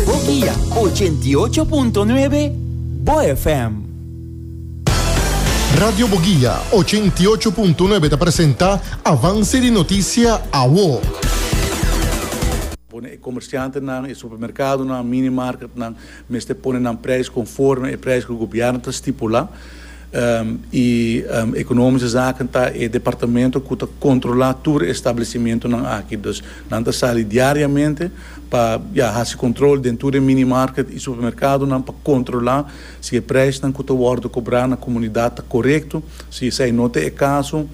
Bo guia ochenta i ocho punto nuebe Bo FM. Radio Bo Guia ochenta i ocho punto nuebe ta presenta Avance di Noticia Awo. Pone e comerciantenan, e supermercadonan, mini marketnan mester pone nan prijs conforme e prijs cu gobierno ta stipula. i Economische Zaken ta e departamento cu ta controla tur e establecimentonan aki. Dus nan ta sali diariamente pa ya haci control den tur e minimarket i supermercadonan pa controla si e prijsnan cu ta wordo cobra na comunidad ta corecto. Si esai no ta e caso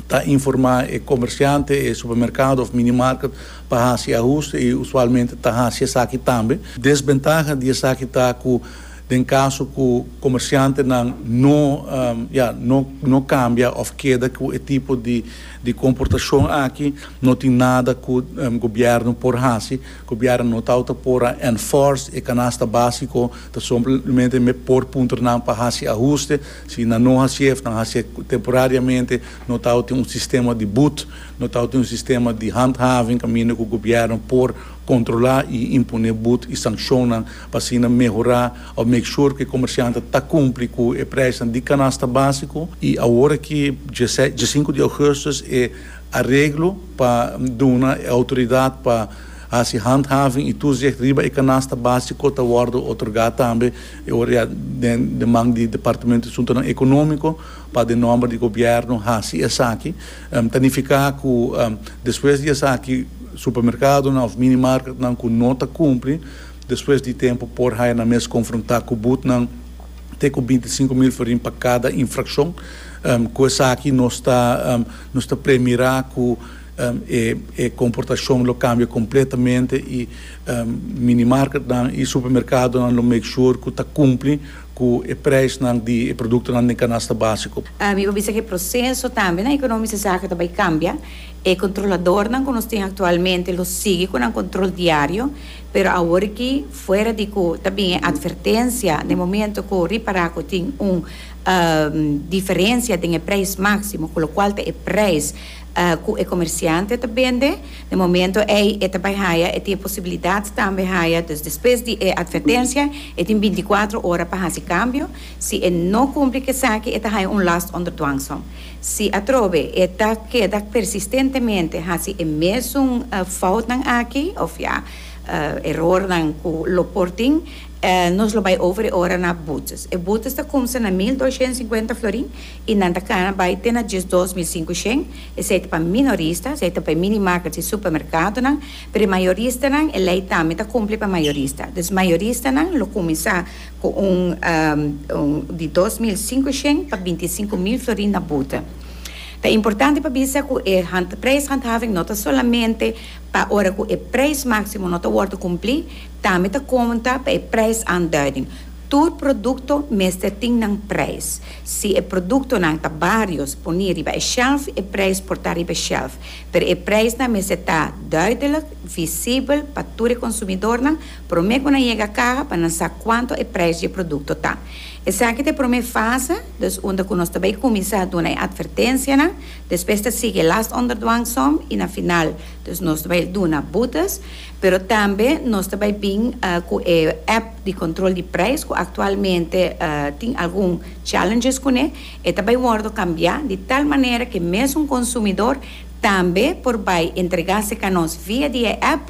ta informa e comerciante, e supermercado of minimarket pa haci ahuste i usualmente ta haci esaki tambe. Desventaha di esaki ta cu. Den caso cu comerciantenan no ya no cambia of keda cu e tipo di comportacion aki, no tin nada cu gobierno por haci. Gobierno no tau ta por a enforce e canasta basico, ta somplemente me por puntra nan pa haci ahuste. Si nan no haci'e of nan haci'e temporariamente, no tau tin un sistema di boet, no tau tin un sistema di handhaving caminda cu gobierno por controla y impone boet y sancionnan pa asina mehorá òf make sure ku e komersiantnan ta kumpli ku e preisnan di kanasta básiko i awor aki dieses diesinku di ougustus e areglo pa duna e outoridat pa hasi handhaving i toezicht riba e kanasta básiko ta wòrdu otorgá tambe e ora ya den den man di departamento di suntunan ekonómiko pa den nòmber di gobièrnu hasi esaki ta nifiká ku despues di esaki supermerkadonan òf mini marketnan ku no ta kumpli Despues di tempu por haya nan mes konfrontá ku butnan te ku binti sinku mil florin pa kada infrakshon. Ku esaki nos ta nos ta premirá ku e e komportashon lo kambia kompletamente i minimarketnan i supermerkadonan lo make sure ku ta kumpli ku e preisnan di e produktonan den kanasta básiko. Mi por bisa ku e proseso tambe na ekonomiske zaken ta bai kambia. E kontroladornan ku nos tin aktualmente lo sigui ku nan kontrol diario. Pero awor aki, fuera di cu ta bin e advertencia na e momento cu ripara cu tin un diferencia den e prijs maximo, cu locual ta e prijs cu e comerciante ta bende, na e momento ey e ta bay haya, e tin e posibilidad tambe haya, dus despues di e advertencia e tin binticuatro ora pa haci cambio, si e no cumpli cu esaki e ta haya un last onder dwangsom. Si atrobe e ta keda persistentemente hasi e mesun foutnan aki, òf ja, erornan ku lo por tin, nos lo bai over e ora na boetes. E boetes ta kumsa na mil doshent sinkuenta florin i nan ta kana bai te na diesdos mil sinku shen. Esei ta pa minorista, esei ta pa e mini market i supermerkadonan, pero e mayoristanan e lei tambe ta kumpli pa e mayorista. Dus mayoristanan lo kuminsá. Cu un di dos mil singushen pa binti i sinku mil florin na bute. Ta importante pa bisa cu e prijshandhaving no ta solamente pa ora cu e prijs maximo no ta wordo cumpli, tambe ta conta pa e prijsaanduiding. Tur producto mester tin nan prijs. Si e productonan ta barios poni riba e shelf, e prijs por ta riba e shelf. Pero e prijsnan mester ta duidelijk, visibel pa tur e consumidornan, Promé ku nan yega kaha pa nan sa kuantu e preis di e produkto ta. Esaki ta e promé fase, dus unda ku nos ta bai kuminsá duna e atvertensianan, despues ta sigui e last under dwang som i na final dus nos ta bai duna butas, pero tambe nos ta bai bin ku e app di kontrol di preis ku aktualmente tin algun challenges kuné, e ta bai wòrdu kambiá di tal manera ku mesun konsumidor tambe por bai entregá se kanos via di e app,